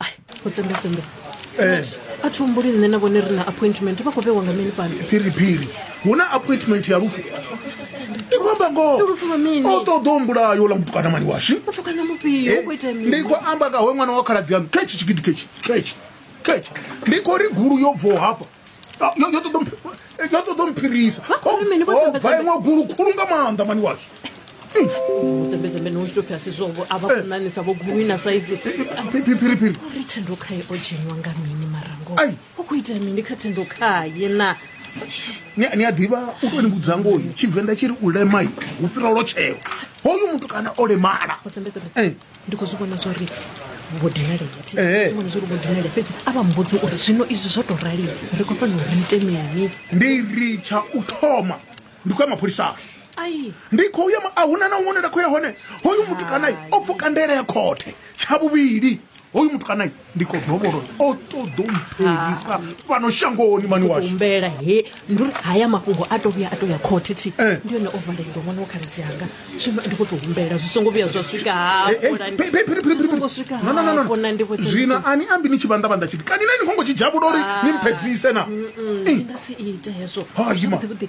ai u tsembetsembe a thi humbuli nṋe na vhone ri na appointment vha khou vhewa nga mini fhano phiriphiri hu na appointment ya lufu ndi khou amba ngoho Ndi lufu lwa mini? o ṱoḓa u mbulayo ḽa mutukana mani washu muthu kana mufhio Eh, u khou itea ndi mini khou amba kawe ṅwana wa khaladzi yanu khetshi tshigidi khetshi khetshi khetshi ndi khou ri gulu yo bvaho hafha ah, yo ṱoḓa u mphirisa bva iṅwe gulu khulu nga maanḓa mani washu mudzembedzembe no zwi topfhi zwovo a vha kunanisa vho gulu ina saizi phiriphiri uri thendo khaye o dzheniwa nga mini marango u khou ita mini kha thendo khaye na ni a ḓivha u to ni vhudza ngoyi tshivenḓa tshi ri u lemai hu fhira lotshelo hoyu muthu kana o lemala ndi khou zwi vhona zwa uri vho dinalea thi Ee. zwi vhona zwa uri vho dinalea fhedzi a vha mbudze uri zwino izwi zwo tou rali ri khou fanela uri ite mini ndi ri tsha u thoma ndi khou ya mapholisani ai ndi khou ya ma- a huna na huṅwe nda khou ya hone hoyu mutukanayi o pfuka ndaela ya khothe tsha vhuvhili hoyu mutukanayi ndi khou dovholo o ṱoḓo mphelisa ah. fhano shangoni mani washumbela he ndi uri haya mafhungo a to vhuya a to ya khothe thi eh. ndi yone o valelwa ṅwana wa khaladzi anga zwino ndi khou tou humbela zwi songo vhuya zwa swika hafhona ndi zwino ani ambi ni tshi vhanḓavhanḓa tshiti kani na ni khongo tshi dzhavhula uri ah. ni mphedzise na nga si ite hezwo zwavhuḓivhuḓi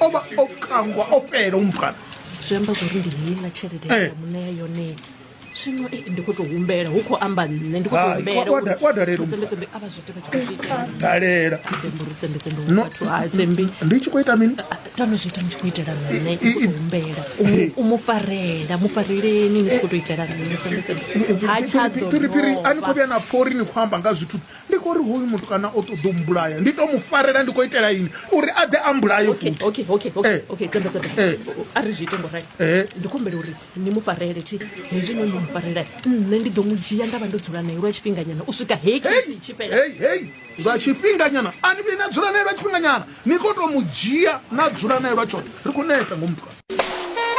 o vha o kangwa o fhela umukana zwi amba zwa uri ndi heiḽa tshelede eh. ya muṋea yone zwino eh, ndi khou tou humbela hu khou amba nṋe ndi khou tou humbelatsembetsembe a vha zwi ita vha tshi khou zwi itadalela uri tsembetsembe vhathu a tsembi ndi tshi khou ita mini tano zwi ita ni tshi khou itela nṋe ndi khou humbela u mu farela mu fareleni ni khou tou itela nṋe tsembetsembe ha tshadophiri a ni khou vhuya na pfha uri ni khou amba nga zwithu Ndi khou ri hoyu mutukana o ṱoḓa u mbulaya, ndi tou mu farela ndi khou itela ini? Uri a ḓe a mbulaye futhi. Okay, okay, okay, eh. okay, tsebe tsebe. Eh. A ri zwi ite ngo rai. Eh. Ndi khou humbela uri ni mu farele thi hezwi no mu farela. Nṋe ndi ḓo mu dzhia nda vha ndo dzula nae lwa tshifhinganyana u swika heyi kisi tshi fhela. Hey, hey. Lwa tshifhinganyana a ni vhi na dzula nae lwa tshifhinganyana. Ni khou tou mu dzhia na dzula nae lwa tshoṱhe. Ri khou neta ngomu mutukana.